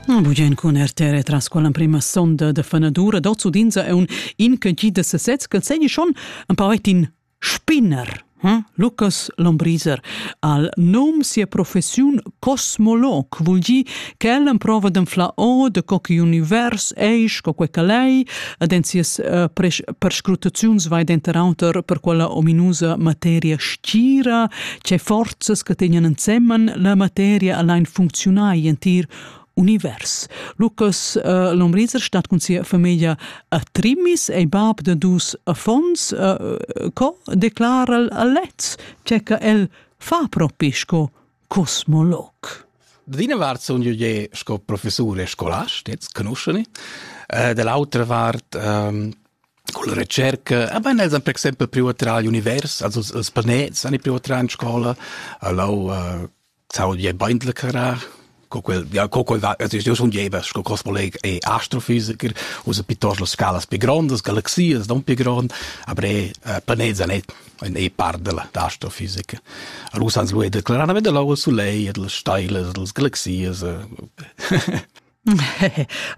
Na bugen cun RTR tras quella prima sonda de fanadura d'ozzudinza e un in che gi de sesez che segni schon ein paretin spinner hm? Lucas Lombriser al nom sia professiun cosmolog vul gi ch'el emprova d'enflar o de co che univers eis co quei calei ed en sias uh, perscrutaziuns vai denter auter per quella ominusa materia stira Che forzas che tegnan ensemen la materia allein funcziunai entir univers. Lucas uh, Lomriser stat cun sia famiglia a Trimmis e bab de dus affons uh, co declara lez che el fa propi sco cosmolog. Dina vart sun io je sco professur e scolast, jetzt conosceni. Uh, dall'altra vart um, Culla retscherca havan els per exempel priu a trar igl univers, also els planets han priu a trar in scola, allau uh, saudi beindle carar, co quel, ja, co quel va, also io sun jeva, sco cosmoleg e astrofisiker, usa piuttosto las scalas più grandes, galaxias non più grandi, aber e uh, planets han et ein e part della astrofisica. Allora han lu declarar, veda lau il solei, e delle steile, delle galaxias.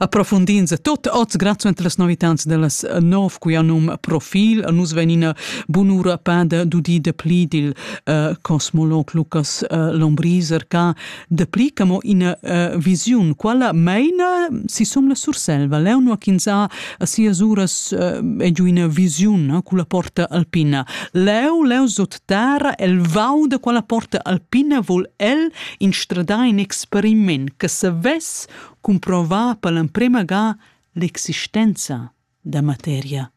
approfundin se tot oz grazie per las novitats dellas nov qui anum profil nus venina bunura pada dudi de pli dil uh, cosmolog Lucas uh, Lombriser ca de pli camo in uh, visiun quala meina si som la Surselva leono quinza a sia suras uh, e giu in visiun uh, culla porta alpina leo leo sot Tara el vau da quella porta alpina vol el instradar in experiment che savess cumprovar per l'emprema ga l'existenza da materia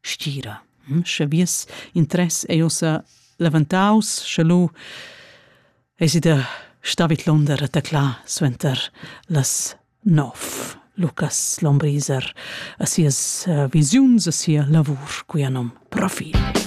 stira. Hm, sche vies interess ei ossa levantaus, sche lu eis da stavit l'onder taclà suenter las nov. Lucas Lombriser a sias uh, visiuns, a sia lavur, cui anom profil.